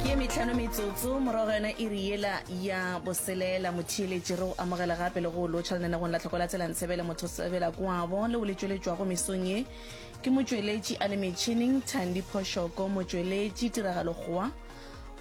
ke ye metlhano metsotso morago ga yona e re yela ya boselela motheeletši re o amogela gape le go lotšha lenanegong la tlhoko la tsela ntshebele motho sebela kwabo le o le tšweletšwago mesong ye ke motšweletši a le metšhineng thandi phošoko motšweletši tiragalo goa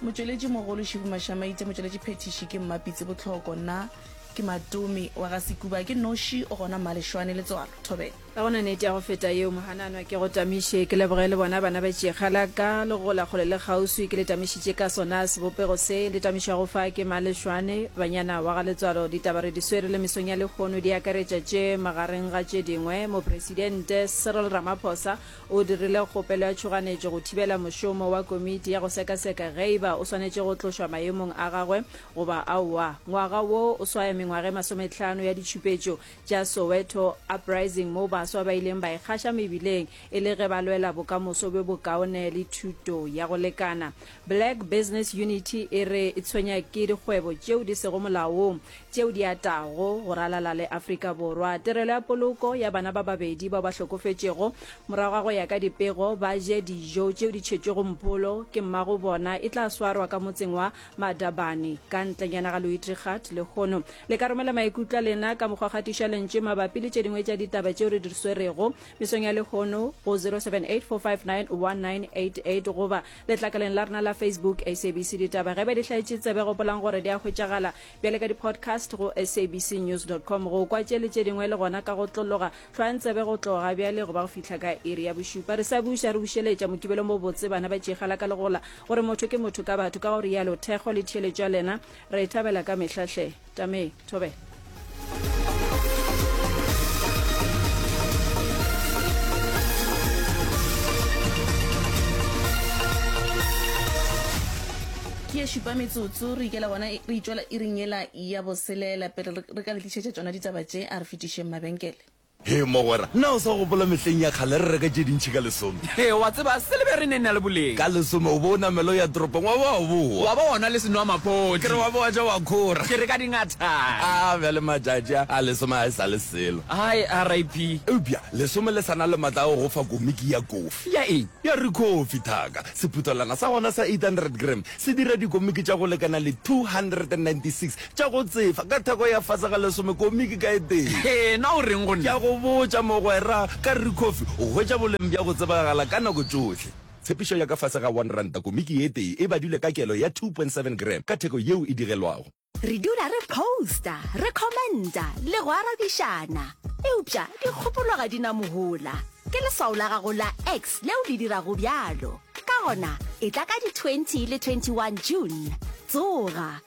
motšweletši mogolo šibu mašamaite motšweletši phethiši ke mmapitse botlhoko nna ke matomi wa ga sekuba ke noši o gona mmalešwane letswalo thobela Ga go na nete ya go feta yeo, mohananwa. Ke go tamiše ke leboge le bona bana ba tšekga la ka, le gola kgole le kgauswi, ke le tamišitše ka sona sebopego se le tamišwago fa ke Malešwane, banyana wa ga Letswalo. Ditaba re di swere le mesong ya lehono di akaretša tše, magareng ga tše dingwe, Mopresidente Cyril Ramaphosa o dirile kgopelo ya tšhoganetšo go thibela mošomo wa komiti ya go sekaseka geiba o swanetše go tlošwa maemong a gagwe goba aowa. Ngwaga wo o swaya mengwaga e masometlhano ya ditšhupetšo tša Soweto Uprising moo baswa ba ileng ba ikgaša mebileng e le ge ba lwela bokamoso bjo bokaone le thuto ya go lekana. Black Business Unity e re e tshwenya ke dikgwebo tšeo di sego molaong tšeo di atago go ralala le Afrika Borwa. Tirelo ya Poloko ya bana ba babedi bao ba hlokofetšego morago ga go ya ka dipego ba je dijo tšeo di tšhetšwego mpholo ke mmago bona e tla swarwa ka motseng wa Madabane, ka ntlenyana ga Luitregat, lehono le ka romela maikutlo a lena ka mokgwa kgatiša lentše mabapi le tše dingwe tša ditaba tšeo re di swerego mesong ya lehono go 0784591988 goba letlakaleng la rena la Facebook SABC Ditaba. Ge ba di hlaetše tsebe, gopolang gore di a hwetšagala bjale ka di-podcast go sabcnews.com. Go kwa tše le tše dingwe le gona ka go tlologa, hlwayang tsebe go tloga bjale goba go fihla ka iri ya bošupa. Re sa buša re bušeletša Mokibelo mo botse, bana ba tšeegala ka legola. Gore motho ke motho ka batho, ka go rialo thekgo le theeletšo ya lena re e thabela ka mehla hle. Tamee, thobela. Ke ye šupa metsotso, re ikela gona re itšwela iring yela ya boselela. Pele re ka le tlišetša tšona ditaba tše, a re fetišeng mabenkele. Hee mogwera, na o sa gopola mehleng ya kgale re reka tše dintši ka lesome? Hee, wa tseba, silebere e ne e na le boleng. Ka lesome o be o namela o ya toropong wa ba wa bowa. Wa ba gona le senwamaphodi. Ke re wa be wa ja wa khora. Ke re ka dingathana. A bjale matšatši a, a lesome ga e sa le selo. Hai, RIP. Eupša lesome le sa na le matla a go go fa komiki ya kofi. Ya eng? Ya rikhofi, thaka. Sephuthelwana sa gona sa 800 gram se dira dikomiki tša go lekana le 296 Tša go tsefa, ka theko ya fase ga lesome komiki ka e tee. Hee, na o reng go nna? Ke a go botša, mogwera, ka re Rikhofi, o hwetša boleng bja go tsebagala ka nako tšohle. Tshepišo ya ka fase ga one ranta komiki e tee e badilwe ka kelo ya two point seven gram ka theko yeo e digelwago. Re dula re posta, re commenta le go arabišana. Eupša dikgopolo ga di na mohola. Ke leswao la gago la X leo le dirago bjalo. Ka gona, etla ka di twenty le twenty one June. Tsoga!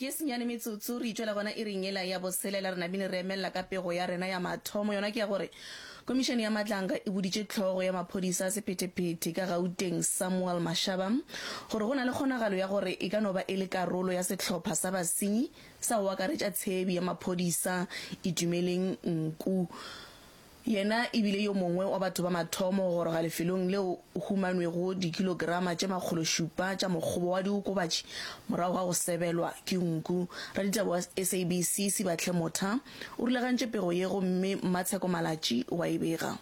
Ke senyane metsotso re itšwela gona iring yela ya boselela, re namile re emelela ka pego ya rena ya mathomo, yona ke ya gore Komišene ya Matlanga e boditše Tlhogo ya Maphodisa a Sephetephete ka Gauteng Samuel Mashaba gore go na le kgonagalo ya gore e ka no ba e le karolo ya sehlopha sa basenyi sa go akaretša tshebi ya maphodisa Itumeleng Nku Yena e bile yo mongwe wa batho ba mathomo go goroga lefelong leo o humanwego dikilograma tše makgolo šupa tša mokgobo wa diokobatši morago ga go sebelwa ke nku. Raditaba wa SABC Sibahle Motha o rulagantše pego ye gomme Mmatsheko Malatji wa e bega.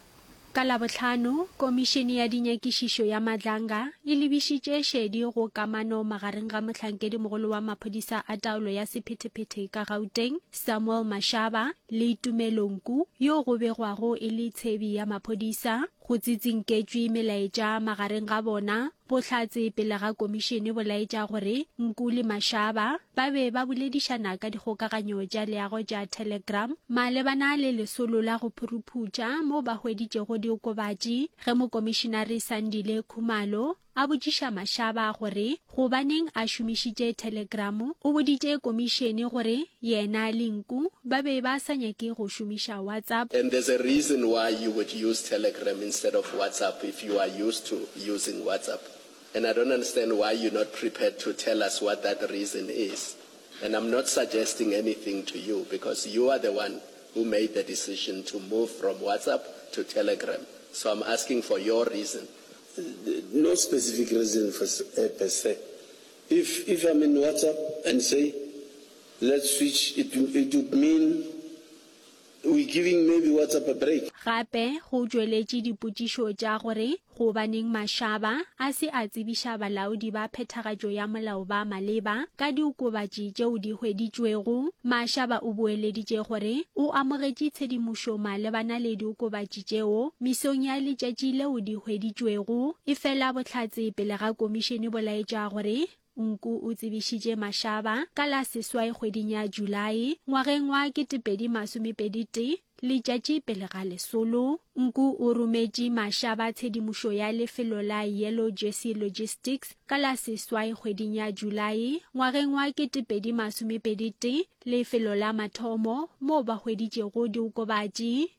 Ka Labohlano, Komišene ya Dinyakišišo ya Madlanga e lebišitše šedi go kamano magareng ga Mohlankedi-mogolo wa Maphodisa a Taolo ya Sephetephete ka Gauteng, Samuel Mashaba, le Tumelonku yo go begwago e le tshebi ya maphodisa, go tsitsinketšwe melaetša magareng ga bona, bohlatse pele ga komišene bo laetša gore Nku le Mashaba ba be ba boledišana ka dikgokaganyo tša leago tša Telegram malebana le lesolo la go phuruphutša mo ba hweditšego diokobatši ge Mokomišenare Sandile Khumalo A botšiša Mashaba gore gobaneng a šomišitše thelegramo, o boditše komišene gore yena le Nku ba be ba sa nyake go šomiša WhatsApp. And there's a reason why you would use telegram instead of WhatsApp if you are used to using WhatsApp and I don't understand why you're not prepared to tell us what that reason is and I'm not suggesting anything to you because you are the one who made the decision to move from WhatsApp to telegram so I'm asking for your reason No specific reason for per se. If if I'm in WhatsApp and say let's switch it it would mean we giving maybe WhatsApp a break. Gape go tšweletše dipotšišo tša gore gobaneng Mashaba a se a tsebiša balaodi ba phethagatšo ya molao ba maleba ka diokobatši tšeo di hweditšwego. Mashaba o boeleditše gore o amogetše tshedimošo malebana le diokobatši dikgwedi tšeo mesong ya letšatši leo di hweditšwego. Efela bohlatse pele ga komišene bo laetša gore Nku o tsebišitše mašaba ka la seswai kgweding ya Julae ngwageng wa 2021 letšatši pele ga lesolo. Nku o rometše mašaba tshedimošo ya lefelo la Yellow Jersey Logistics ka la seswai kgweding ya Julae ngwageng wa 2021 lefelo la mathomo moo ba hweditšego diokobatši.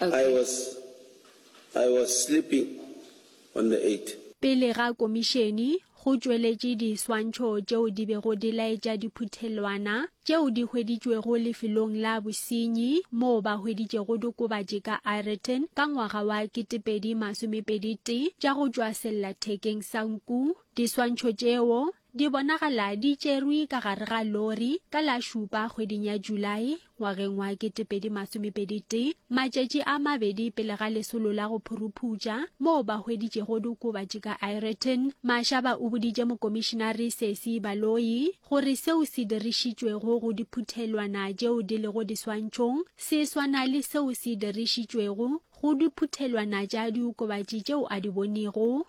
I was, I was sleeping on the eight. Pele ga komišene, go tšweletše diswantšho tšeo di bego di laetša diphuthelwana tšeo di hweditšwego lefelong la bosenyi moo ba hweditšego diokobatši ka Ireton ka ngwaga wa 2021 tša go tšwa sellathekeng sa nku. Diswantšho tšeo Di bonagala di tšerwe ka gare ga lori ka la šupa kgweding ya Julae ngwageng wa 2021, matšatši a mabedi pele ga lesolo la go phuruphutša moo ba hweditšego diokobatši ka Ireton. Mashaba o boditše mokomišinari Sesi Baloyi gore seo se dirišitšwego go diphuthelwana tšeo di lego diswantšhong se swana le seo se dirišitšwego go diphuthelwana tša diokobatši tšeo a di bonego.